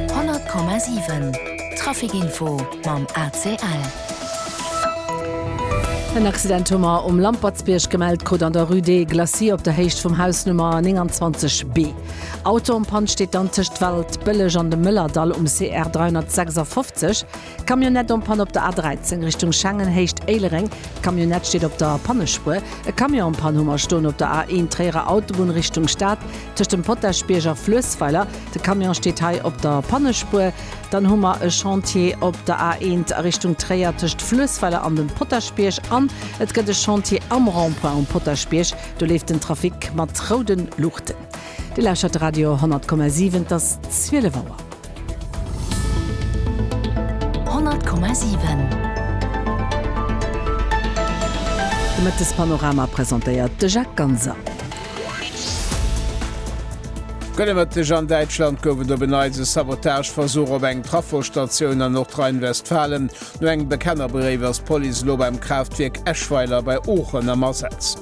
100,7 Traficinfo mam ACL. En Accident hu mer um Lampertsbierg gemellt krut an der Rue des Glacis op der Héicht vum Haus Nummer 29 B. Auto um Pant steet dann tëscht Waldbëlleg an dem Mëllerdall um CR 356. Camionnette en panne op der A13 Richtung Schengen, Héicht Éilereng, Camionnette steet op der Pannespuer. E Camion en panne hu mer stoen op der A1 Tréierer Autobunn Richtung Stad, tëscht dem Potaschbierg a Fluessweiler. De Camion steet hei op der Pannespuer. Dann hu mer e Chantier op der A1 a Richtung Tréier tëscht Fluessweiler an dem Potaschbierg. An et gëtt e Chantier am Rond-point um Potaschbierg, do leeft den Trafic mat roude Luuchten. Dir lauschtert Radio 10,7, et ass 12 Auer. 100,7 De Mëttespanorama presentéiert de Jacques Ganser. Gëlle Mëtteg, An Däitschland gouf et op en Neits e Sabotageversuch op eng Trafostatioun an Nordrhein-Westfalen. No engem Bekennerbréif ass d'Police elo beim Kraaftwierk Eschweiler bei Oochen am Asaz.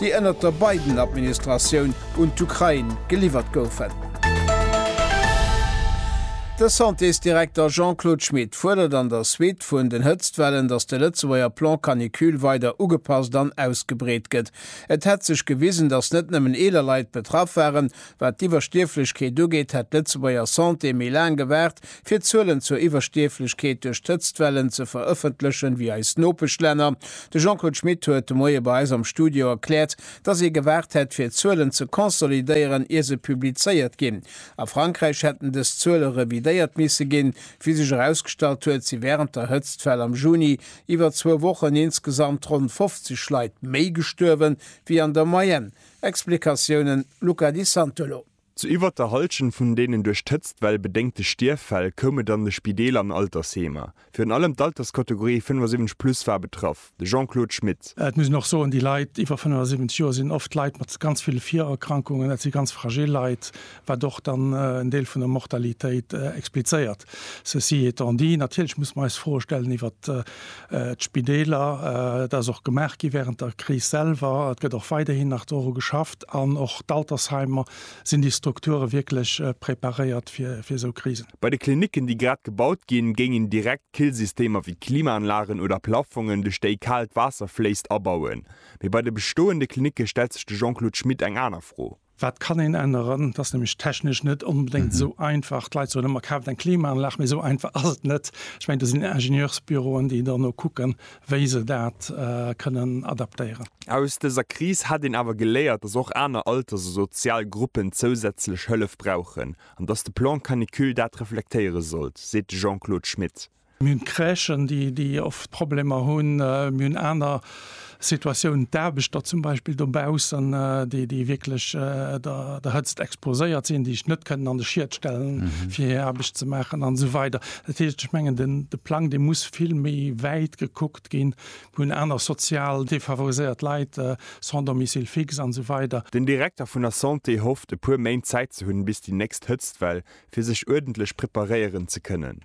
déi ënnert der Biden-Administratioun un d'Ukrain geliwwert goufen. De Santésdirekter Jean-Claude Schmit fuerdert an der Suite vun den Hëtztwellen, datt de Lëtzebuerger Plan Canicule weider ugepasst an ausgebreet gëtt. Et hätt sech gewisen, datt net nëmmen eeler Leit betraff waren, Wat d'Iwwerstierflechkeet ugeet, hätt d'Lëtzebuerger Santé méi laang gewaart, fir d'Zuelen zur Iwwerstierflechkeet duerch d'Hëtztwellen ze verëffentlechen, wéi eis Nopeschlänner. De Jean-Claude Schmit huet de Moie bei eis am Studio erkläert, datt ee gewaart hätt, fir d'Zuelen ze consolidéieren, ier se publizéiert ginn. A Frankräich hätten dës Zuele revidéiert misse ginn, wéi sech erausgestallt huet, si wärend der Hëtztwell am Juni iwwer zwou Wochen insgesamt ronn 50 Leit méi gestuerwen, wéi an der Moyenne. Explikatiounen, Luca Di Santolo. Zu iwwert der Hallschent vun deenen duerch d'Hëtztwell bedéngte Stierffäll koum et an de Spideeler an Altersheemer. Virun allem d'Alterskategorie 75 plus war betraff, de Jean-Claude Schmit. Et muss een och soen, déi Leit iwwer 75 Joer sinn oft Leit mat ganz ville Virerkrankungen, dat si ganz fragil Leit, wat och dann en Deel vun der Mortalitéit explizéiert. Ceci étant dit, natierlech muss mer eis Froe stellen iwwert d'Spideeler. Et ass och gemaach gi während der Kris selwer, et gëtt och weiderhin nach doru geschafft an och d'Altersheimer. Sinn déi Strukture wierklech preparéiert fir esou Krisen? Bei de Klinicken, déi grad gebaut ginn, géingen direkt Killsystemer wéi Klimaanlagen oder Plaffongen, duerch déi kaalt Waasser fléisst, abauen. Mee bei de bestoende Klinicke stellt sech de Jean-Claude Schmit eng aner Fro. Wat kann een änneren? Et ass nämlech technesch net onbedéngt esou einfach. D'Leit soen ëmmer, Kaaft eng Klimaanlag, mee esou einfach ass et net. Ech mengen, do sinn Ingenieursbüroen, déi dono kucken, wéi se dat kënnen adaptéieren. Aus dëser Kris hätt een awer geléiert, dass och aner Alters a sozial Gruppen zousätzlech Hëllef brauchen an dass de Plan canicule dat reflektéiere sollt, seet de Jean-Claude Schmit. Mir hunn d'Crèchen, déi oft Problemer hunn. Mir hunn aner Situatiounen, d'Aarbechter zum Beispill dobaussen, déi wierklech der Hëtzt exposéiert sinn, déi sech net kënnen an de Schiet stellen, fir hir Aarbecht ze maachen an esou weider. Dat heescht, ech mengen, de Plang, dee muss vill méi wäit gekuckt ginn. Mir hunn aner sozial defavoriséiert Leit, sans domicile fixe an esou weider. Den Direkter vun der Santé hofft, e puer Méint Zäit ze hunn, bis déi nächst Hëtztwell, fir sech uerdentlech preparéieren ze kënnen.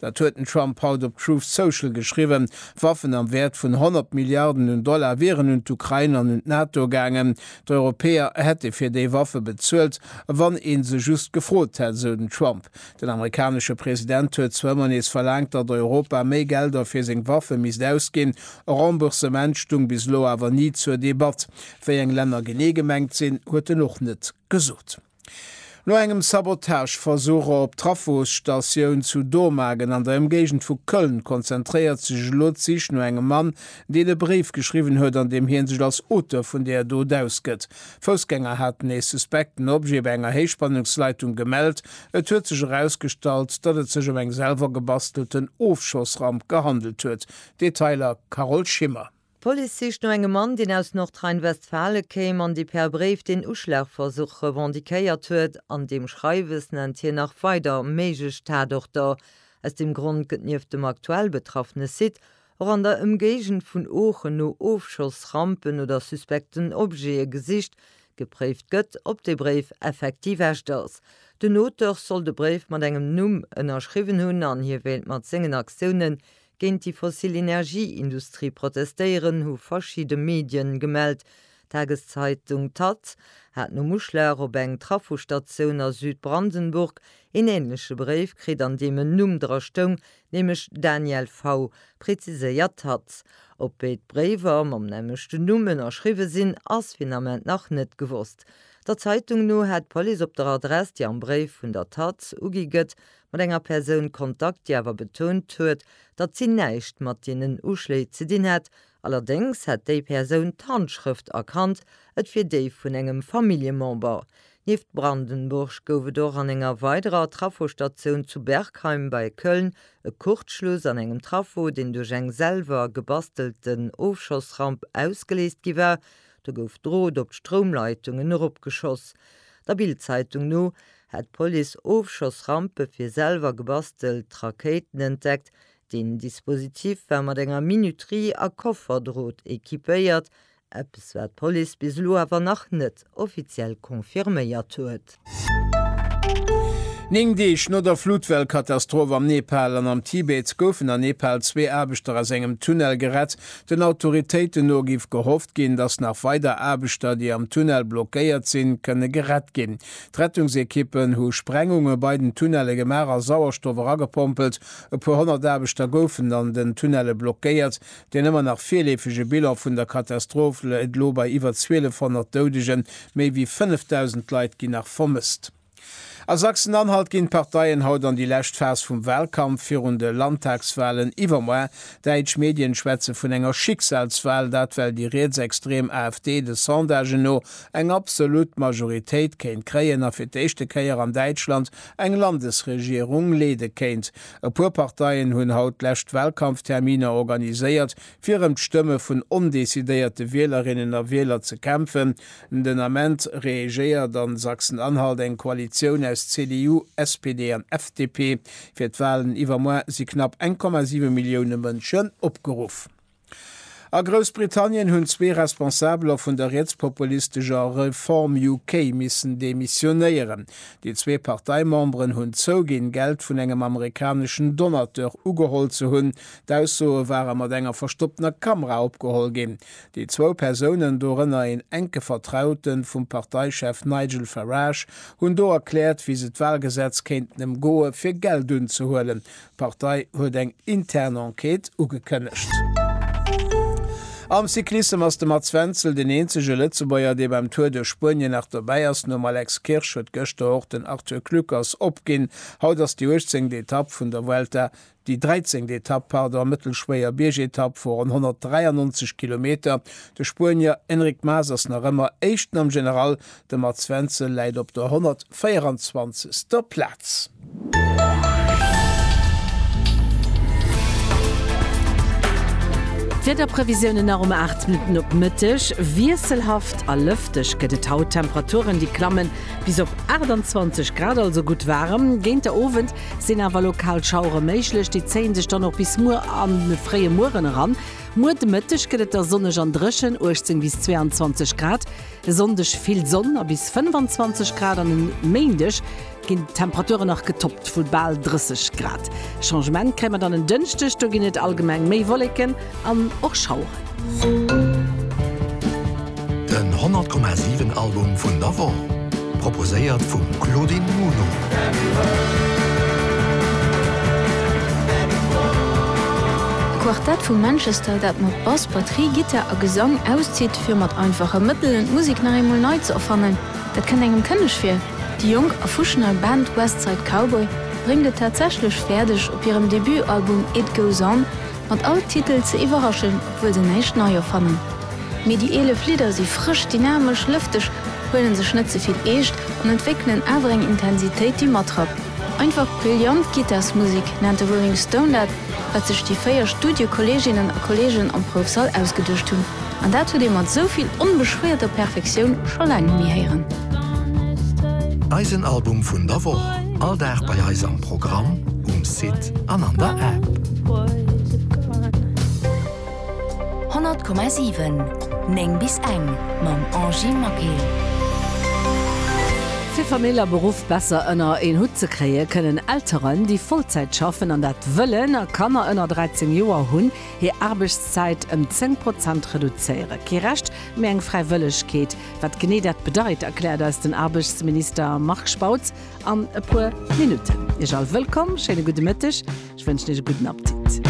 Dat huet den Trump haut op Truth Social geschriwwen. Waffen am Wäert vun 100 Milliarden un Dollar wieren un d'Ukrain an un d'NATO gaangen. D'Europäer hätte fir déi Waffe bezuelt, wann ee se just gefrot hätt, esou den Trump. Den amerikanesche President huet zwar ëmmer nees verlaangt, datt Europa méi Gelder fir seng Waffe misst ausginn. E Remboursement stoung bis elo awer ni zur Debatt. Wéi eng Länner genee gemengt sinn, huet en och net Gesot. No engem Sabotageversuch op Trafosstatioun zu Dormagen an der Ëmgéigend vu Köln konzentréiert sech elo d'Sich no engem Mann, deen e Bréif geschriwwen huet, an deem hie sech als Auteur vun der Dot ausgëtt. Foussgänger haten ee suspekten Objet bei enger Héichspannungsleitung gemellt. Et huet sech erausgestallt, datt et sech ëm eng selwer gebastelten Ofschossramp gehandelt huet. Detailer Carole Schimmer. D'Police sicht no engem Mann, deen aus Nordrhein-Westfalen kéim an dee per Bréif den Uschlagversuch revendiquéiert huet. An deem Schreiwes nennt hien nach weider méiglech Tatorter. Aus deem Grond gëtt nieft dem aktuell betraffene Site och an der Ëmgéigend vun Oochen no Ofschossrampen oder suspekten Objete gesicht. Gepréift gëtt, ob de Bréif effektiv echt ass. Den Auteur soll de Bréif mat engem Numm ënnerschriwwen hunn an hie wéilt mat sengen Aktiounen Géint déi fossil Energieindustrie protestéieren, hu verschidde Medien gemellt. D'Tageszeitung taz hat nom Uschlag op eng Trafostatioun a Südbrandenburg een änleche Bréif kritt, an deem en Numm dra stoung, nämlech Daniel V. Preziséiert d'taz, ob béid Bréiwer mam nämmlechten Numm ënnerschriwwe sinn, ass fir den Ament nach net gewosst. Der Zeitung no hätt d'Police op der Adress, déi am Bréif vun der taz ugi gëtt, mat enger Persoun Kontakt, déi awer betount huet, datt si näischt mat deenen Uschléi ze dinn hätt. Allerdéngs hätt déi Persoun d'Handschrëft erkannt, et wier déi vun engem Familljemember. Nieft Brandenburg gouf et och an enger weiderer Traffostatioun zu Bergheim bei Köln e Kurzschluss an engem Traffo, deen duerch eng selwer gebastelten Ofschossramp ausgeléist gi war. Do gouf Drot op d'Stroumleitungen eropgeschoss. Der Bild-Zeitung no hat d'Police Ofschossrampe fir selwer gebastelt Rakéiten entdeckt. Den Dispositif war mat enger Minuterie a Kofferdrot equipéiert, eppes wat d'Police bis elo awer nach net offiziell confirméiert huet. Néng Deeg no der Flutwellkatastroph am Nepal an am Tibet goufen an Nepal zwee Aarbechter aus engem Tunnel gerett. Den Autoritéiten no géif gehofft ginn, dass nach weider Aarbechter, déi am Tunnel blockéiert sinn, kënne gerett ginn. D'Rettungsekippen hu Sprengunge bei den Tunnelle gemaach a Sauerstoff eragepompelt. E puer honnert Aarbechter goufen an den Tunnelle blockéiert. Deen ëmmer nach virleefege Bilan vun der Katastroph läit elo bei iwwer 1.200 Doudegen. Méi wéi 5.000 Leit ginn nach vermësst. A Sachsen-Anhalt ginn d'Parteien haut an déi lescht Phas vum Wahlkampf virun de Landtagswahlen iwwermoar. Däitsch Medien schwätze vun enger Schicksalswahl. Dat well déi rietsextrem AfD de Sondagen no eng absolut Majoritéit kéint kréien a fir d'éischte Kéier an Däitschland eng Landesregierung leede kéint. E puer Parteien hunn haut d'lescht Walkampfterminer organiséiert, fir ëm d'Stëmme vun ondecidéierte Wielerinnen a Wieler ze kämpfen. Den Ament reegéiert a Sachsen-Anhalt eng Koalitioun aus CDU, SPD an FDP. Fir d'Walen iwwermuer si knapp 1,7 Millioune Mënschen opgeruff. A Groussbritannien hunn zwee Responsabeler vun der rietspopulistescher Reform UK missen demissionéieren. Déi zwee Parteimemberen hunn zouginn, Geld vun engem amerikaneschen Donateur ugeholl ze hunn. D'Aussoe ware mat enger verstopptener Kamera opgeholl ginn. Déi zwou Persounen, dorënner een enke Vertraute vum Parteichef Nigel Farage, hunn do erkläert, wéi se d'Walgesetz kéinten ëmgoe fir Geld unzehuelen, D'Partei huet eng intern Enquête ugekënnegt. Am Cyclissem ass de Mats Wenzel den eenzege Lëtzebuerger, dee beim Tour duerch Spuenien nach dobäi ass. Nom Alex Kirsch huet gëschter och den Arthur Kluckers opginn. Haut ass déi uechtzéngt Etapp vun der Vuelta. Déi dräizéngt Etapp, pardon, mëttelschwéier Biergetapp vu ronn 193 Kilometer. De Spuenier Enric Mas ass nach ëmmer Éischten am General, De Mats Wenzel läit op der 124. Plaz. D'Wiederprevisiounen nach um 8 Minutten op Mëtteg, Wiesselhaft a lëfteg gëtt et haut, Temperaturen déi klammen bis op 28 Grad, also gutt waarem. Géint de Owend sinn awer lokal Schauere méiglech, déi zéie sech dann och bis muer an de fréie Mueren eran. Muer de Mëtteg gëtt et da sonneg an dréchen, 18 bis 22 Grad. E Sonndeg vill Sonn a bis 25 Grad an e Méindeg ginn d'Temperature nach getoppt vu bal 30 Grad. E Changement kréie mer dann en Dënschdeg, do ginn et allgemeng méi Wolleken an och Schaueren. Den 100,7 Album vun der Woch, proposéiert vum Claudine Muno. E Quartett vu Manchester, dat mat Bass, Batterie, Gittar a Gesang auszitt. Fir mat einfache Mëttelen d'Musek nach eemol nei ze erfannen, dat kënnt engem kënneg vir. Déi jonk a fuschnei Band West Side Cowboy bréngt et tatsächlech fäerdeg, op hirem Debutalbum It Goes On mat all Titel ze iwwerraschen, obwuel se näischt nei erfannen. Mee déi 11 Lidder si frësch, dynamesch, lëfteg, huelen sech net ze vill eescht an entwéckelen awer eng Intensitéit, déi matrappt. Einfach brillant Gittarsmusek nennt de Rolling Stone dat, wat sech déi véier Studiokolleeginnen a kolleegen am Proufsall ausgeduecht hunn. An dat huet ee mat esou vill onbeschwéierter Perfektioun scho laang net méi héieren. Eisen Album vun der Woch, all Dag bei eis am Programm, um Site an an der App. 100,7 9 bis eng mam Angy Maquet. Fir Famill a Beruff besser ënner een Hutt ze kréien, kënnen Elteren, déi Vollzäit schaffen an dat wëllen a Kanner ënner 13 Joer hunn, hir Aarbechtszäit ëm 10 Prozent reduzéiere. Kee Recht, mee eng Fräiwëllegkeet. Wat genee dat bedeit, erkläert eis den Aarbechtsminister Marc Spautz an e puer Minutten. Iech all wëllkomm, schéine gudde Mëtteg, ech wënschen Iech e gudden Appetit.